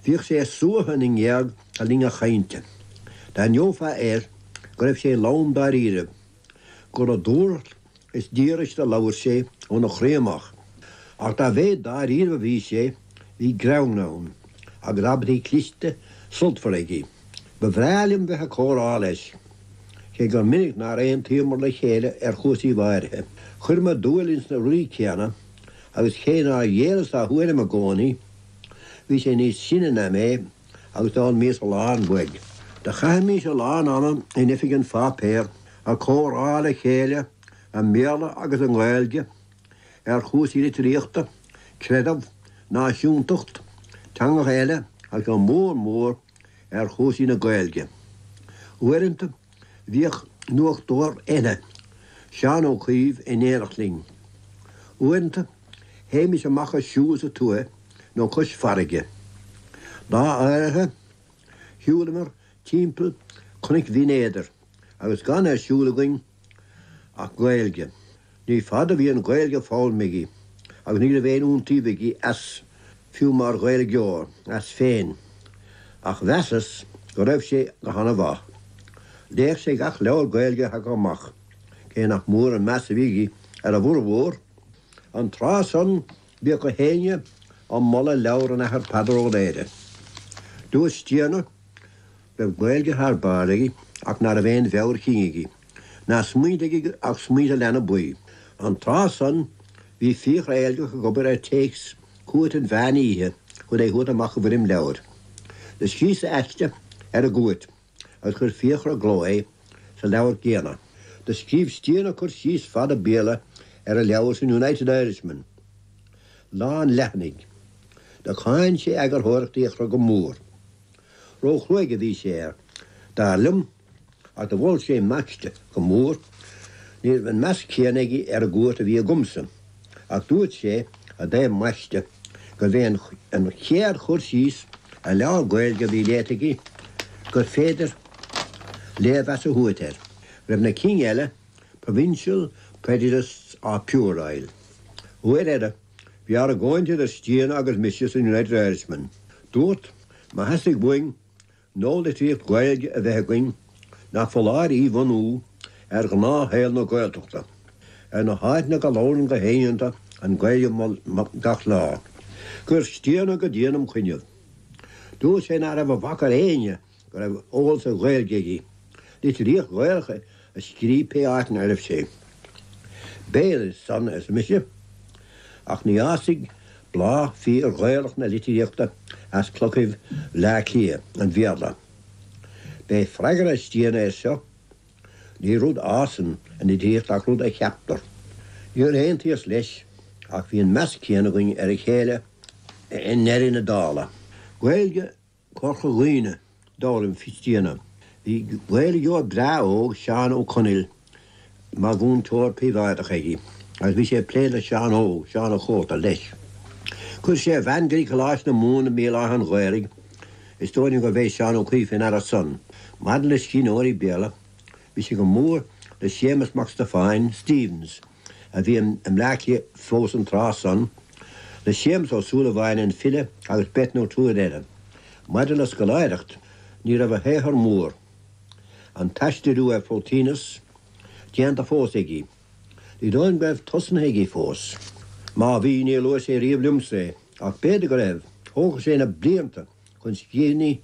Bhíodh sé ag suathadh na ngéag le linn a chainte. D'aithneofá air go raibh sé lom dáiríribh, gur le dúthracht is díograis do labhair sé óna chroí amach. Ach dá mhéid dáiríribh a bhí sé, bhí greann ann, agus abairtí cliste, sultmhara aige. Ba bhreá liom bheith ag comhrá leis, cé gur minic nár aontaíomar le chéile ar chúrsaíbh áirithe. Chuireamar dúil ins na rudaí céanna, agus cé nár ghéilleas dá thuairim i gcónaí, Bhí sé níos sine ná mé agus d'fhoghlaimíos a lán uaidh. Do chaithimís a lán ama in oifig an pháipéir ag comhrá le chéile i mBéarla agus i nGaeilge ar chúrsaí litríochta, creideamh, náisiúntacht, teangacha eile agus go mór mór ar chúrsaí na Gaeilge. Uaireanta, Bhíodh nuachtóir eile, Seán Ó Cuív in éineacht linn. Uaireanta, théimis amach ag siúl sa tuaith nó cois farraige. Lá áirithe, shiúlamar timpeall Cnoic Bhinn Éadair agus gan ar siúl againn ach Gaeilge. Ní fada a bhí an Ghaeilge foghlamtha aige, agus ní raibh aon iontaoibh aige as, fiú mar Ghaeilgeoir, as féin. Ach mheasas go raibh sé go han-mhaith. Léadh sé gach leabhar Gaeilge a thagadh amach, cé nach mór an meas a bhí aige ar a bhfurmhór. An tráth san, bhíodh gach éinne ag moladh leabhar an Athar Peadar Ó Laoghaire. Dúirt Stiana. raibh Gaeilge thar barr aige ach ná raibh aon mheabhair chinn aige ná smaointe aige ach smaointe leanbaí. An tráth san, bhí Fiachra Éilgeach ag obair ar téacs Chúirt an Mheán Oíche chun é a thabhairt amach i bhfoirm leabhair. Do scríos-sa aiste ar an gCúirt agus chuir Fiachra i gcló é sa leabhar céanna. Do scríobh Stiana cur síos fada Béarla ar an leabhar san United Irishman, lán leathanaigh. Do cháin sé eagarthóireacht Fhiachra go mór. Róchruaidh a bhí sé air, dar liom, ach do mhol sé m'aiste go mór. Ní raibh an meas céanna aige ar an gCúirt a bhí agamsa, ach dúirt sé i dtaobh m'aiste gurbh é an chéad chur síos ar leabhar Gaeilge a bhí léite aige gur féidir léirmheas a thabhairt air go raibh na cinn eile, Provincial prejudiced or puerile. Uair eile. Bhí argóint idir Stiana agus mise sa United Irishman. Dúrt, má theastaigh uainn nualitríocht Ghaeilge a bheith againn, nach foláir í bhunú ar ghnáthshaol na Gaeltachta, ar na háiteanna go labhrann gach éinne iontu an Ghaeilge gach lá. Chuir Stiana go dian im' choinnibh. Dúirt sé ná raibh a bhac ar éinne go raibh eolas ar Ghaeilge aige, litríocht Ghaelach a scríobh pé áit ina raibh sé. B'fhéidir san, arsa mise, ach ní fhásfaidh bláth fíor-Ghaelach na litríochta as clochaibh Bhleá Cliath, an Bhéarla. B'é freagra Stiabhna air seo, Ní rud a fhásann an litríocht ach rud a cheaptar. Níor aontaíos leis, ach bhí an meas céanna againn ar a chéile i ndeireadh na dála. Gaeilge Chorca Dhuibhne, d'fhoghlaim Stiabhna. Bhí Gaeilgeoir breá óg, Seán Ó Conaill, mar mhúinteoir príobháideach aige, agus bhí sé ag plé le Seán Óg, Seán a' Chóta, leis. Chuir sé a bhean go dtí Coláiste na Mumhan i mBéal Átha an Ghaorthaidh, is dóigh liom gur bh'é Seán Ó Cuív fé ndeara san. Maidir le scríbhneoirí Béarla, bhí sé go mór le Séamus Mac Stiofáin, Stephens, a bhí i mBleá Cliath fós an tráth san, le Séamus Ó Súilleabháin an file agus beirt nó triúr eile. Maidir le scoláireacht, ní raibh a shaothar mór, an t-aistriú ar Phlotinus, déanta fós aige. Ní dóigh liom go raibh tosnaithe aige fós. Má bhí, níor luaigh sé riamh liomsa é, ach b'fhéidir go raibh, thógfadh sé na blianta chun scríbhinní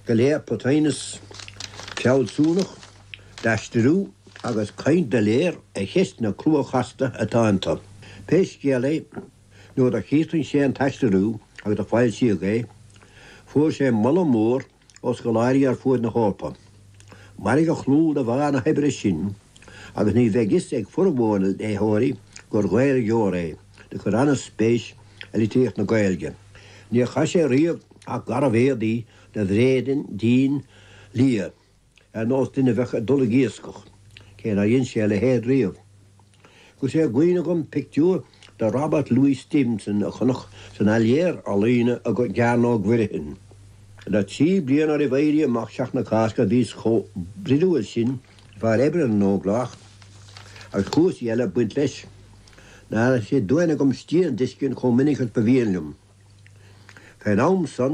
go léir Plotinus, fealsúnach, d'aistriú agus caint doiléir ar cheisteanna crua chasta atá iontu. Pé scéal é, nuair a chríochnaigh sé an t-aistriú agus a foilsíodh é, fuair sé moladh mór ó scoláirí ar fuaid na hEorpa. Mairfidh a chlú de bharr na hoibre sin agus ní bheidh fhios ag formhór na léitheoirí gur Ghaeilgeoir é. do chuir an-spéis i litríocht na Gaeilge. Níor chaith sé riamh ach garbh-éadaí de bhréidín dín liath, ar nós duine a bheadh ag dul ag iascach, cé nár dhein sé a leithéid riamh. Chuir sé i gcuimhne dhom pictiúr de Robert Louis Stevenson a chonac san Áiléar Ealaíne i gCearnóg Mhuirfean. Le trí bliana roimh Éirí Amach Sheachtain na Cásca bhíos chomh broidiúil sin de bharr oibre na nÓglach agus cúrsaí eile ag baint leis, ná raibh sé d'uain agam Stiabhna d'fheiscint chomh minic is ba mhian liom. Fén am san,